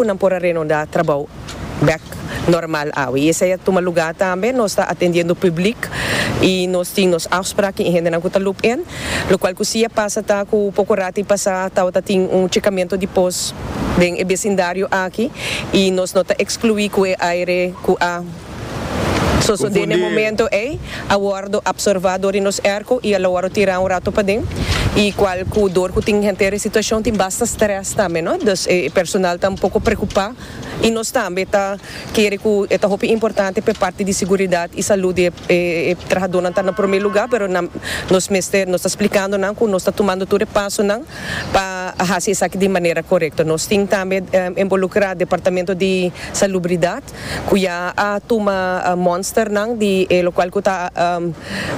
Ku nan por a renundá trabou bek normal awe. I esei a tuma lugá tambe. Nos ta atendiendo pùblik i nos tin nos afsprak ki hendenan ku ta loop in. Lokual ku si a pasa ta ku poko rati pasá tabata tin un chekamentu di pos den e besindario aki i nos no ta ekskluí ku e aire ku a Sosodé n'e momento ei a wòrdu apsorvá dor di nos erko i a lo wòrdu tirá un ratu paden, i kual ku dor ku tin henter e situashon tin basta strès tambe, no? Dus e personal ta un poko preokupá i nos tambe ta kere ku e ta hopi importante p'e parti di siguridat i salú di e trahadónan ta na promé lugá, pero nan nos mester nos ta splikando nan ku nos ta tumando tur e pasonan pa hasi esaki di manera korekto. Nos tin tambe envolukrá departamento di salubridat. ku ya a tuma monsternan di e lokual ku ta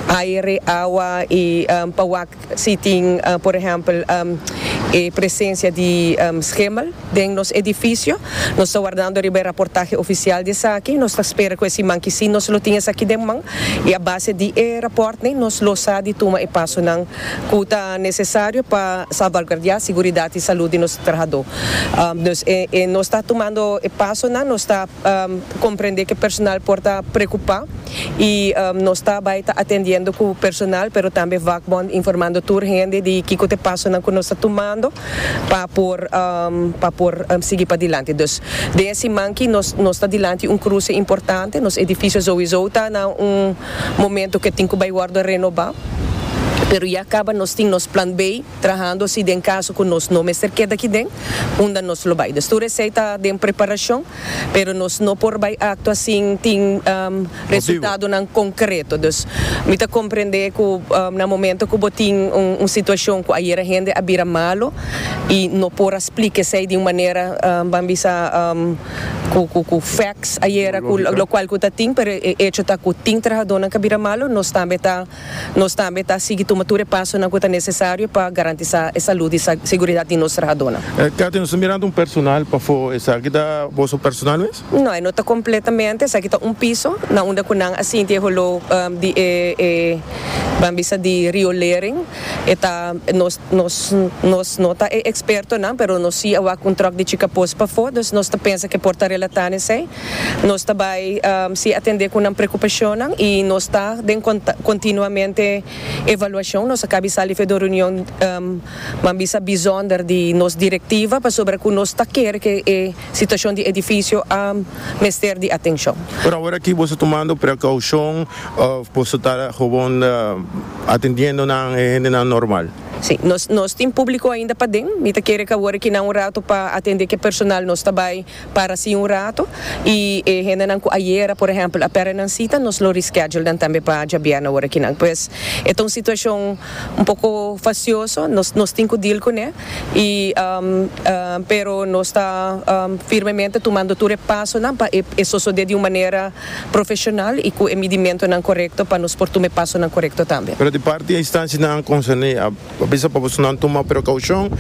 aere, awa i pa wak si tin por ehèmpel e presensia di schimel den nos edifisio. Nos ta wardando riba e raportahe ofisial di esaki. Nos ta spera ku e siman ki si nos lo tin esaki den man i a base di e rapòrtnan nos lo sa di tuma e pasonan cu ta necesario pa salvaguardia siguridat y salud di nos trahador. Nos e nos ta tumando e pasonan, nos ta comprende cu e personal por ta preocupa y nos ta bay ta atendiendo cu personal pero tambe vakbond informando tur hende di kico ta e pasonan cu nos ta tumando pa por pa por sigui padilanti. Dus den e siman aki nos nos ta dilanti un cruce importante, nos edificio sowiso ta na un. momento ke tin ku bai wòrdu renobá, pero ya kaba nos tin nos plan B trahando si den kaso ku nos no mester keda aki den, unda nos lo bai. Dus tur esei ta den preparashon, pero nos no por bai aktua sin tin resultadonan konkreto. Dus mi ta komprendé ku na momento ku bo tin un situashon ku ayera hende a bira malu i no por a splika esei di un manera, ban bisa, cu cu cu facts ayera cu lo cual cu ta tin pero e hecho ta cu tin trahadornan ca bira malo nos tambe ta nos tambe ta sigui tuma tur e pasonan cu ta necesario pa garantisa e salud y seguridad di nos trahadornan. Cathy, nos ta mirando un personal pafo esaki ta boso personal mes? No, e no ta completamente, esaki ta un piso na unda cu nan a sinti e holor di e e ban bisa di riolering. e ta nos nos nos no ta e ekspertonan pero nos si a wak un tròk di chika pos pafó dus nos ta pensa ke por ta relatá nesei nos ta bai si atendé ku nan prekupashonnan i nos ta den kontak kontinuamente evaluashon nos a kabi sali efek di un reunion nan bisa bizònder di nos direktiva pasobra ku nos ta kere ke e situashon di edifisio a mester di atenshon. Por ahora aki boso tumando prekaushon òf boso ta gowon. Atendiendo nan e hendenan normal. Sí, nos nos tin público ainda paden. Mi ta kere kawor aki nan un rato pa atende ke personal. Nos ta bai para así un rato y e hendenan ku ayera, por ehèmpel, a pèrdè nan sita, nos lo reschedule nan tambe pa djabièrnè awor aki nan. Pues, e ta un situashon un poko fasioso, nos nos tin ku deal kuné y pero nos ta firmemente tumando tur e pasonan pa e e sosodé di un manera. profeshonal i ku e midimentonan korekto pa nos por tuma e pasonan korekto tambe. Pero di parti e istansianan konserné a bisa pa bosonan tuma prekoushon,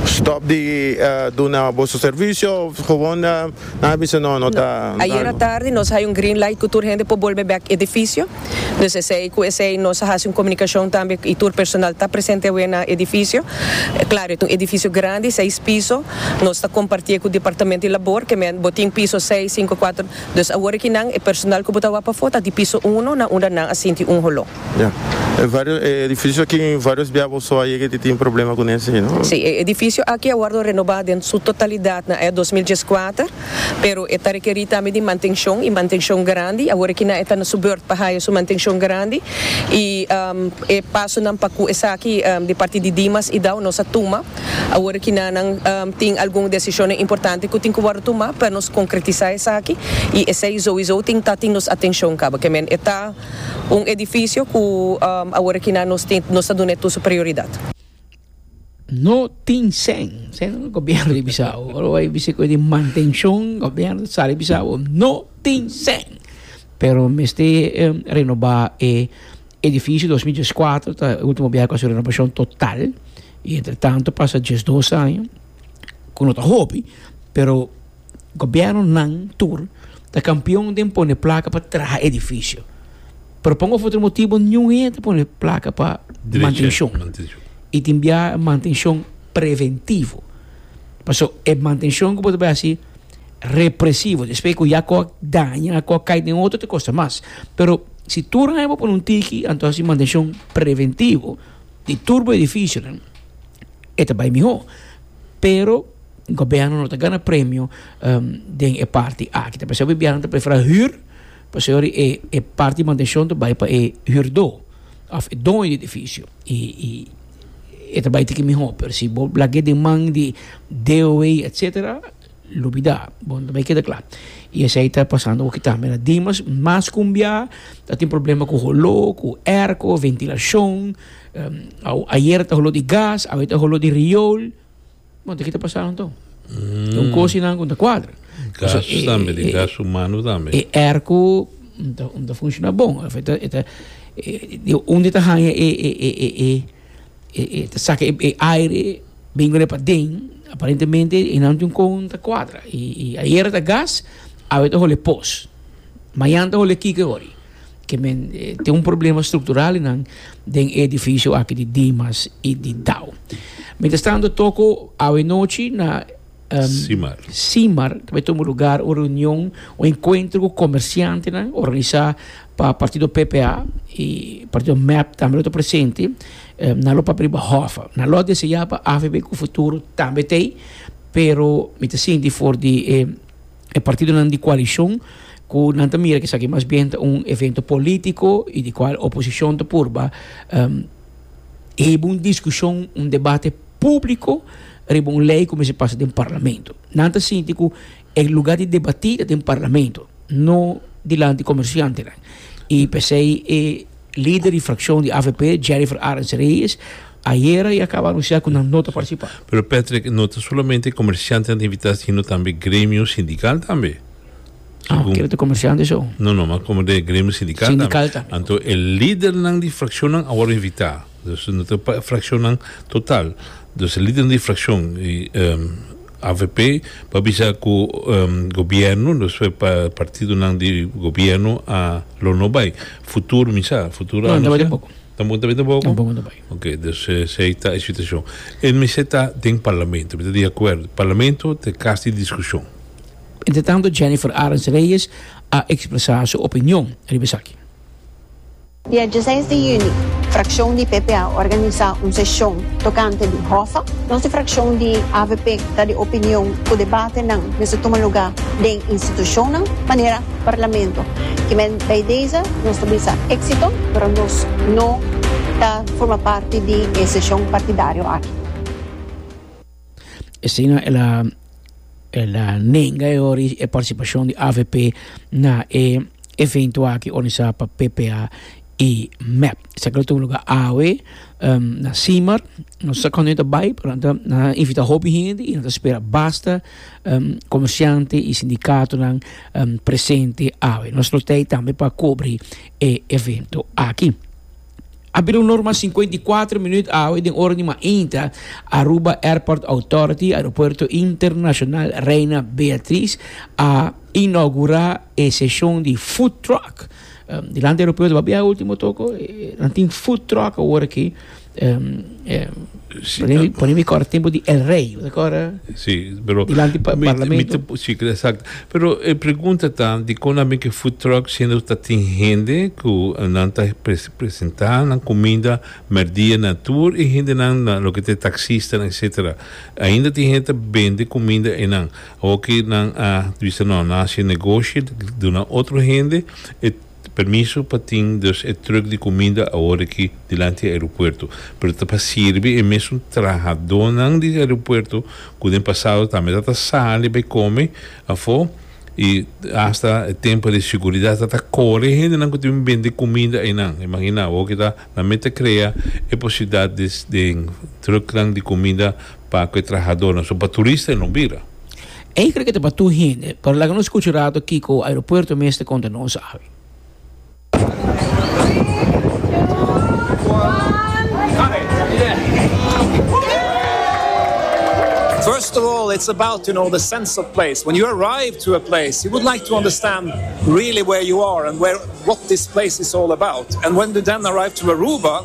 stòp di duna boso servisio òf gewoon nan a bisa no, no ta. Ayer atardi nos a haya un green light ku tur hende por bolbe bèk edifisio. Dus esei ku esei nos a hasi un komunikashon tambe i tur personal ta presente awe na edifisio. Klaro e ta un edifisio grandi, seis piso, nos ta kompartié ku Departamento di Labor, ke men bo tin piso seis, sinku, kuater. Dus awor e kinan, e personal ku bo ta wak pafó ta di piso uno na unda nan a sinti un holó. Ya. E vários e edifisio aki vários bia bo so a yega di tin problema ku nes ei, no? Sí, e edifisio aki a wòrdu renobá den su totalidat na e dos mil dies kuater, pero e ta rekerí tambe di mantenshon i mantenshon grandi. Awor e kinan e ta na su bèrt pa haya su mantenshon grandi i e pasonan pa ku esaki di parti di Dimas i Dao nos a tuma. Awor aki nan nan tin algun desishonnan importante ku tin ku wòrdu tumá pa nos konkretisá esaki i esei souiso tin ta tin nos atenshon kaba ke men. E ta un edifisio ku awor aki nan nos tin nos ta duna e tur su prioridat. No tin sen sen gobièrnu di Bisau. Ora bo bai bisita ku e di mantenshon gobièrnu sa di Bisau no tin sen pero mester renobá e. Edifisio dos mi dies kuater ta e ultimo biaha ku a haci renovacion total y entre tanto pasa dies dos aña ku no ta hopi pero gobierno nan tur ta campeon den pone placa pa traha edifisio pero pa un of otro motibo niun hende ta pone placa pa mantencion y tin biaha mantencion preventivo pasobra e mantencion ku bo ta bay haci. represivo despues cu ya coa daña coa cai den otro te costa mas pero si tur aña bo pone un tiki anto si mantencion preventivo di tur bo edificionan e ta bay miho pero gobierno no ta gana premio den e parti aki ta pasobra biaha nan ta prefera huur pasobra di e e parti mantencion ta bay pa e huurdo of e doño di edificio y y e ta bay tiki miho pero si bo lagu'e den man di DOH etcetera. Lo bida, bon ta bay keda cla. Y esey ta pasando awor ki tambe na Dimas. Mas cumbia, ta tin problema cu holo, cu airco, ventilacion. Ayer ta holo di gas, awe ta holo di riol. Bon, ta ki ta pasa anto. Ta un cosa y nan cu no ta cuadra. Gas tambe, di gas humano tambe. E airco no ta funciona bon. Unda ta haya e. E e ta saka e e aire bin kore paden aparentemente e nan tin kon ta kuadra i i ayera ta gas awe ta hole pos mayan ta hole kiko e hori ke men tin un problema struktural i nan den e edifisio aki di dimas i di dao mientras tanto toko awe nochi na Simar. Simar, ta bai tuma un lugar, un reunion, un encuentro cu comerciantenan, organisa pa partido PPA y partido mep tambe lo ta presente. Nan lo papia riba hofa. Nan lo a desea pa avp cu futuro tambe ta ey, pero mi ta sinti for di e partidonan di coalicion cu nan ta mira cu esaki mas bien ta un evento politico y di cual oposicion ta purba hebe un discusion, un debate. públiko riba un lei ku mester pasa den parlamento. Nan ta sinti ku e lugá di debatí ta den parlamento, no dilanti komersiantenan. I p'esei e lider di frakshon di avp, Jennifer Arends Reyes, ayera i a kaba anunsiá ku nan no ta partisipá. Pero Patrick, no ta solamente komersiantenan ta invitá sino tambe gremio sindikal tambe. Ah, kere ta komersiante so? No, no, mas komo de gremio sindikal tambe. Sindikal tambe. Anto e lidernan di frakshonnan a wòrdu invitá. Dus no ta pa e frakshonnan total. Dus e lidernan di frakshon i avp por bisa ku gobièrnu, dus e partidonan di gobièrnu a lo no bai. Futuro mi sa, futuro a anunsá. No, tampoco. Tampoco ta bai? Tampoco no ta bai. Ok, dus esei ta e situashon. E mester ta den parlamento, mi ta di akuerdo. Parlamento ta e kas di diskushon. Entretanto Jennifer Arends Reyes a ekspresá su opinion riba esaki. Dia diesseis di yüni, frakshon di PP a organisá un seshon tokante di Hoffa. Nos di frakshon di avp ta di opinion ku debatenan mester tuma lugá den institushonnan manera Parlamento. Kimen bay deze nos ta bisa éksito, pero nos no ta forma parti di e seshon partidario aki. Asina el a el a nenga e ora e partisipashon di avp na e evento aki organisá pa ppa i mep. Esaki lo tuma luga awe na Simar. Nos no sa kònde nan ta bai, pero nan ta nan a invitá hopi hende i nan ta spera basta komersiante i sindikatonan presente awe. Nos lo tei tambe pa kubri e evento aki. A bira un norma sinkuenta i kuater minuut awe den ora di mainta, Aruba Airport Authority, Aeropuerto Internacional Reina Beatriz, a inaugura e seshon di food truck. Um, dilanti aeropuerto, papia ultimo toko, nan tin food truck awor aki. Um, Eh, si, pone, mi, pone mi corre tiempo di el rey, de corre? Si, pero... Dilanti pa parlamento. Si, exacto. Pero e pregunta ta, di con a make food truck siendo ta tin hende cu nan ta pres, presenta nan cuminda merdia na tur e hendenan, na loke ta e taxistanan etcetera. Ainda tin hende ta bende cuminda enan. Awo cu nan a bisa no, nan a haci negoshi, duna otro hende, e. Permiso pa tin dus e truck di cuminda aworiki dilanti e aeropuerto, pero ta pa sirbi e mesun trahadonan di aeropuerto cu den pasado tambe ta ta sali bay come afo y hasta e tempo di siguridad ta ta core e hendenan cu ta bin bende cuminda eynan. Imagina awo cu ta nan mete crea e posibilidad di den trucknan di cuminda pa cu e trahadornan, so pa turista e no bira. Ei cree que ta pa tur hende, pero laga nos scucha un rato kico aeropuerto mes ta conta nos awe. First of all it's about you know the sense of place when you arrive to a place you would like to understand really where you are and where what this place is all about and when you then arrive to Aruba.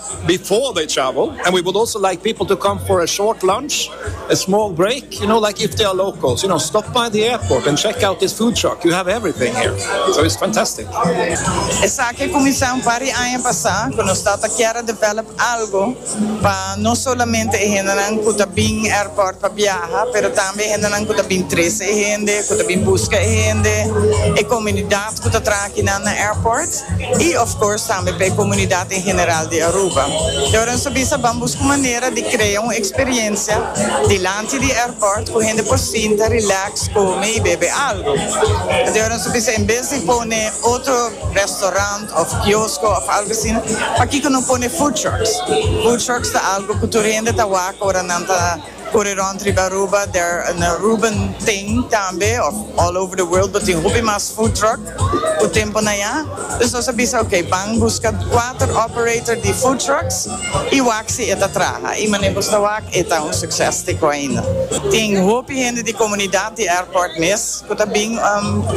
before they travel and we would also like people to come for a short lunch a small break you know like if they are locals you know stop by the airport and check out this food truck you have everything here so it's fantastic. Esaki a cuminsa un par di aña pasa cu nos ta ta kier a develop algo pa no solamente e hendenan cu ta bin airport pa biaha pero tambe e hendenan cu ta bin trece e hende, cu ta bin busca e hende, e comunidad. ku ta traha kinan na airport y of course tambe pa e komunidat en general di Aruba. Y ora nos a bisa ban busca un manera di krea un experiencia dilanti di airport ku hende por sinta relax, come y bebe algo. Enton ora nos a bisa en bes di pone otro restaurant of kiosko of algo asina, pakiko no pone food trucks? Food trucks ta algo ku tur hende ta wak ora nan ta. Por e rond riba Aruba der an Aruban thing tambe of all over the world bo tin hopi mas food truck ku tempo na ya. Dus nos a bisa ok ban buska kuater operator di food trucks i wak si e ta traha i mane bo sta wak e ta un succes te ko ainda. Tin hopi hende di komunidat di airport mes ku ta bin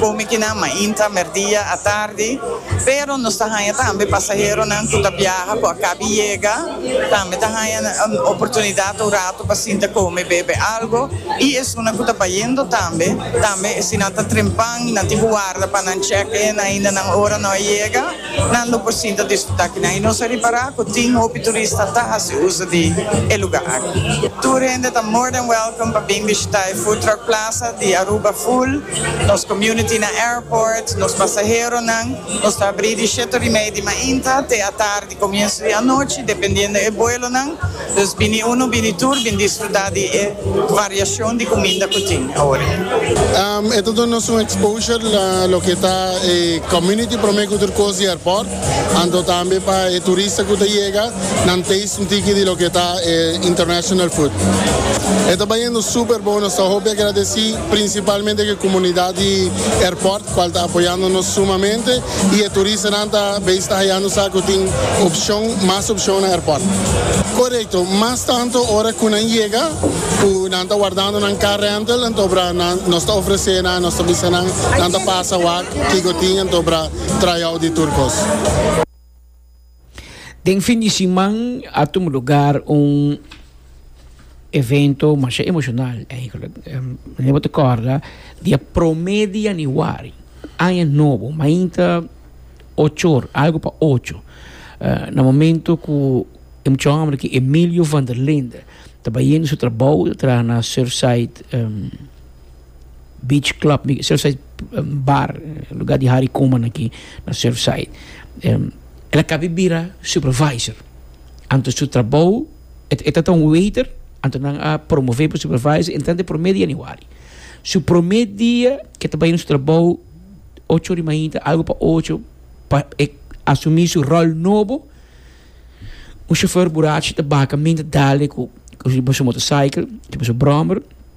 komi kinan mainta, merdia, atardi pero nos ta haña tambe pasaheronan ku ta biaha ku a kabi yega. Tambe ta haña oportunidat un rato pa sinta kome, bebe algo i esunnan ku ta bayendo tambe. Tambe si nan ta trempan i nan tin ku warda pa nan check-in ainda nan ora no a yega, nan lo por sinta disfrutá kinan. I nos a ripará ku tin hopi turista ta hasi uso di e lugá aki. Tur hende ta more than welcome pa bin bishitá e Food Truck Plaza di Aruba Full, nos community na airport, nos pasaheronan. Nos ta abrí di shetorimei di mainta te atardi. E comienso di anochi, dependiendo e vuelonan, dus bini uno, bini tur, bin disfruta di e variacion di cuminda cu tin oe. E ta duna nos un exposure na loke ta e community prome cu tur cos di airport, anto tambe pa e turista cu ta yega, nan taste un tiki di loke ta e international food. E ta bayendo super bon, nos ta hopi agradeci principalmente cu e comunidad di airport. cual ta apoyando nos sumamente y e turistanan ta bay sta hayando sa cu tin opcion, mas opcion na airport. Correcto, mas tanto ora cu nan yega, cu nan ta wardando nan car rental, entobra nan, nos ta ofrece nan, nos ta bisa nan, nan ta pasa wak kico tin, entobra try out di tur cos. Den fin di siman a tuma lugar un evento masha emocional eigenlijk. Mi lembra ta corda di e prome di januari, aña nobo, mainta ochor, algo pa ocho, na momento cu e muchacho hombre aki Emilio van der Linde ta bayendo su trabao, ta traha na Surfside. Beach club di Surfside bar lugar di hari kuma na aki na Surfside el a kabe bira supervisor anto su trabou e ta e ta un waiter anto nan a promove pa supervisor entra den prome di Januari su prome dia ke ta bai na su trabou ocho ora mainta algu pa ocho pa e asumi su rol nobo un shofer burachi ta baka men ta dale ku riba su motorcycle riba su brommer.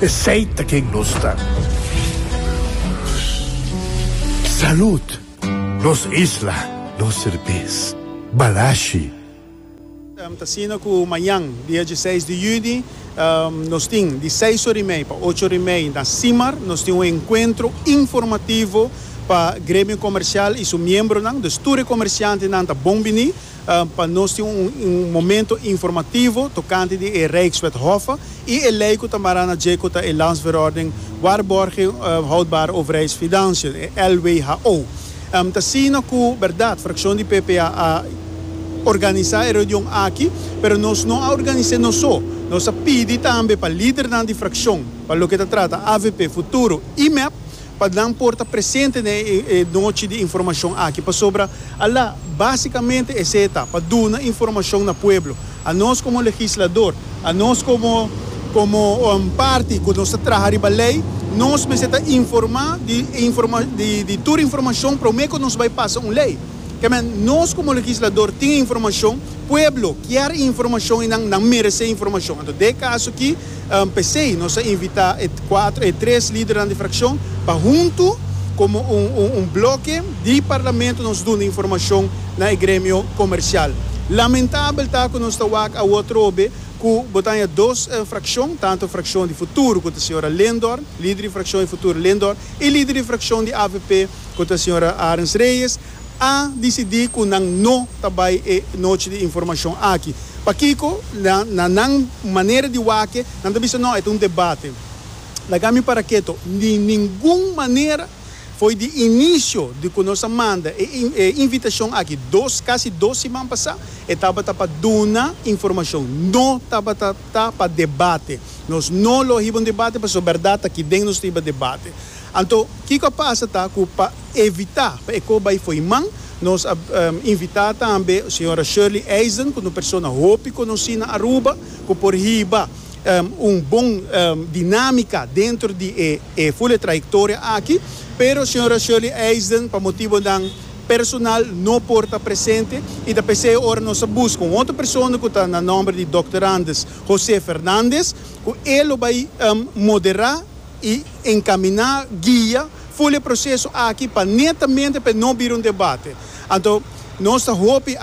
Esey ta ken nos ta. Salud! Nos isla, nos serbes. Balashi. Ta asina cu mañan, dia dieseis di juni, nos tin di seis ora y mei pa ocho ora y mei na Simar, nos tin un encuentro informativo pa gremio comercial y su miembronan. Dus tur e comerciantenan ta bon bini. pa nos tin un momento informativo tocante di e Rijkswet Hoffe y e ley cu ta mara na dje cu ta e Landsverordening Waarborging Houdbare Overheidsfinanciën, e LWHO. T'asina cu berdad fraccion di PP a organisa e reunion aki, pero nos no a organise nos so. Nos a pidi tambe pa lidernan di fraccion pa loke ta trata avp, Futuro y mep, pa nan por ta presente na e nochi di informashon aki pasobra a la básikamente esei ta pa duna informashon na pueblo. A nos komo legislador, a nos komo komo parti ku nos ta traha riba lei, nos mester ta informá di informa di di tur informashon promé ku nos bai pasa un lei. Kèmen nos komo legislador tin e informashon, pueblo kier e informashon i nan nan meresé e informashon. Anto den e kaso akí. P'esei, nos a invitá e kuater, e tres lidernan di frakshon pa huntu komo un, un, un bloke di parlamento nos duna informashon na e gremio komersial. Lamentabel ta ku nos ta wak awor trobe ku bo taña dos frakshon, tantu frakshon di Futuro ku ta señora Lindor, lider di frakshon di Futuro Lindor, i lider di frakshon di avp ku ta señora Arens Reyes, a disidí ku nan no ta bai e Nochi di Informashon aki. Pakiko? Na nan manera di wak-e, nan ta bisa, No, e ta un debate. Laga mi para keto. Di ningun manera! Fo'i di inisio di ku nos a manda e invitashon aki dos, kasi dos siman pasá, e tabata pa duna informashon. No tabata ta pa debate. Nos no lo a hiba un debate pasobra bèrdat ta ki den nos ta hiba debate. Anto, kiko a pasa ta ku pa. evitá pa e kos bai fo'i man. Nos a invitá tambe señora Shirley Eisen, ku ta un persona hopi konosí na Aruba, ku por hiba un bon dinámika dentro di e ful e trayektoria aki. Pero señora Shirley Eisen, pa motibonan personal, no por ta presente i ta p'esei ora nos a buska un otro persona ku ta na nòmber di Dòkter Anders José Fernández, ku e lo bai moderá. i encaminá guia full e proceso aki pa netamente pa e no bira un debate. Anto nos ta hopi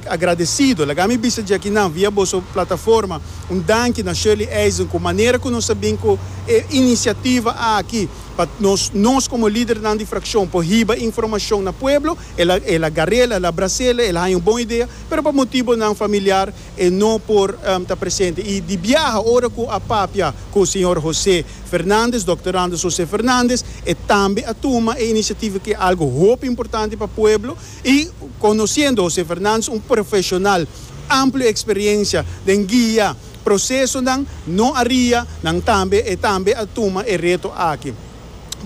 agradecido. Laga mi bisa dje aki nan via boso plataforma un danki na Shirley Eisen cu manera cu nos a bin cu e iniciativa aki pa nos nos como lidernan di fraccion por hiba informacion na pueblo. El a garela, el a bracela, el a haña un bon idea pero pa motibonan familiar e no por ta presente. I di biaha ora ku a papia ku señor José Fernández, Dòkter Anders José Fernández, e tambe a tuma e inisiativa ku e algu hopi importante pa pueblo i konosiendo José Fernández un profeshonal amplio eksperiensia den guia prosesonan, no aria nan tambe e tambe a tuma e reto aki.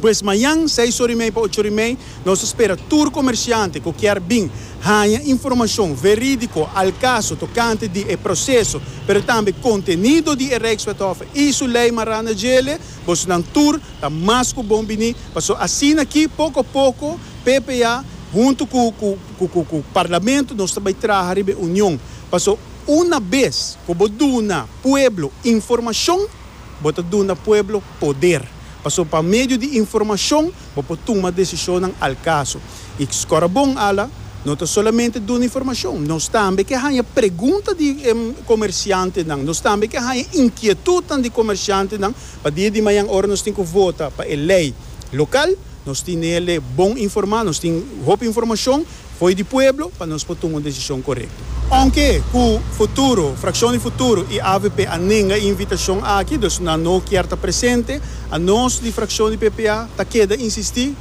Pues mañan seis or i mei pa ocho or i mei nos ta spera tur komersiante ku kier bin haña informashon verídiko al kaso tokante di e proseso pero tambe kontenido di e Rijkswethof i su lei Maranda Djele. Bosonan tur ta mas ku bon biní paso asina aki poko poko PPA huntu ku ku ku ku Parlamento nos ta bai traha riba e union paso una bes ku bo duna pueblo informashon, Bo ta duna pueblo poder, pasobra pa medio di informashon bo por tuma desishonnan al kaso. I Skorabon ala no ta solamente duna informashon, nos tambe ke haña pregunta di komersiantenan, nos tambe ke haña inkietutnan di komersiantenan pa dia di mañan ora nos tin ku vota pa e lei lokal, nos tin nele bon informá, nos tin hopi informashon. Fo'i di pueblo pa nos por tuma un desishon korekto. Ounke ku Futuro, Frakshon di Futuro i avp a nenga e invitashon aki, dus nan no kier ta presente, anos di frakshon di ppa ta keda insistí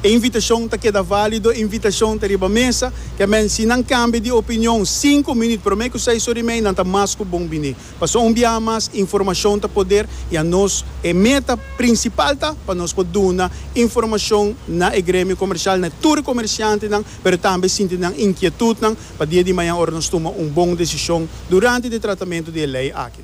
e invitashon ta keda válido, e invitashon ta riba mesa. Kèmen, si nan kambia di opinion sinku minüt promé ku seis ora i mei, nan ta mas ku bon biní. Pasobra un biaha mas informashon ta poder i anos e meta prinsipal ta pa nos por duna informashon na e gremio komersial, na e tur e komersiantenan, pero tambe sinti nan inkietutnan pa dia di mañan ora nos tuma un bon desishon durante di e tratamentu di e lei aki.